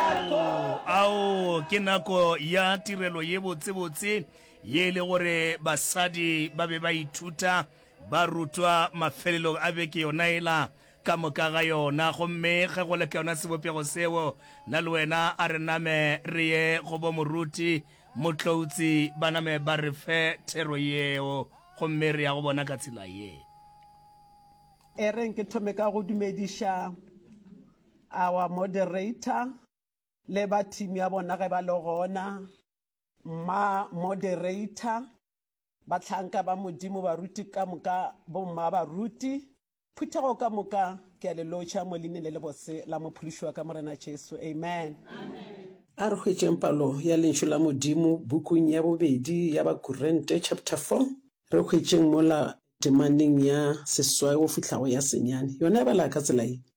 Ao, ao ke nako ya tirelo ye botsebotse ye e le gore basadi ba be ba ithuta, ba rutwa mafelelong a beke yona ela ka moka ga yona. Gomme ge go le ka yona sebopego seo, nna le wena a re name re ye go bo moruti, motloutsi, ba name ba re fe thero yeo, gomme re ya go bona ka tsela ye. Ereng ke thome ka go dumediša Our moderator le ba team ya bona ge ba le gona. Mma moderator, batlhanka ba Modimo, baruti ka moka, bomma baruti, phuthego ka moka, ke a le lotšha mo leine le lebose la mophološiwa ka Morena Jesu. Amen. A re hwetšeng palo ya lentšu la Modimo bukung ya bobedi ya Bakurente chapter 4. Re hwetšeng mola temaneng ya seswai go fihlago ya senyane. Yona e bala ka tsela ye,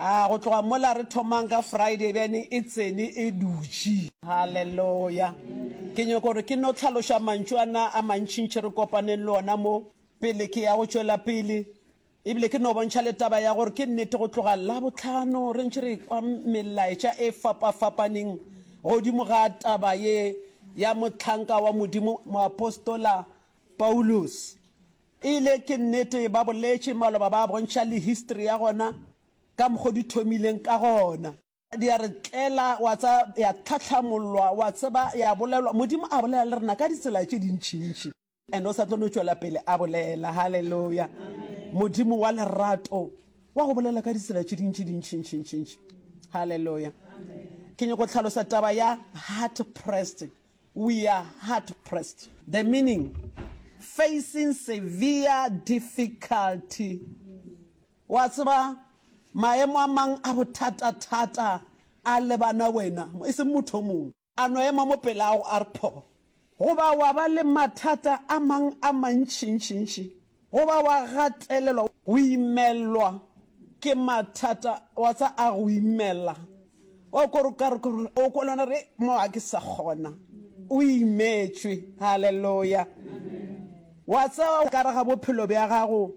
A go tloga mola re thomang ka Friday bjane e tsene e dutše. Haleloya. Ke nyoko gore ke no tlhaloša mantšu a na a mantšintši re kopaneng le ona mo pele ke ya go tšwela pele. Ebile ke no bontšha le taba ya gore ke nnete go tloga Labohlano re ntše re kwa melaetša e fapafapaneng godimo ga taba ye ya mohlanka wa Modimo moapostola Paulus. Eile ke nnete, ba boletše maloba ba bontšha le history ya gona ka mokgo di thomileng ka gona. Di a re tlela, wa tseba, ya tlhahlamollwa, wa tseba, ya bolelwa. Modimo a bolela le rena ka ditsela tše dintšintši, and o sa tlo no tšwela pele a bolela. Haleluya! Modimo wa lerato wa go bolela ka ditsela tše dintši dintšintšintšintši. Haleluya! Ke nyako tlhalosa taba ya heart pressed. We are hard pressed, the meaning facing severe difficulty. Wa tseba maemo a mang a bothata-thata a lebana wena, e seng motho o mongwe. A no ema mo pelago a re pho. Goba wa ba le mathata a mang a mantši-ntši-ntši. Go ba wa gatelelwa, go imelwa ke mathata, wa tsa a go imela, wa ko re ka re ko o ko lona re mo ga ke sa kgona, o imetšwe. Haleloya! Wa tsa ka re ga bophelo bja gago.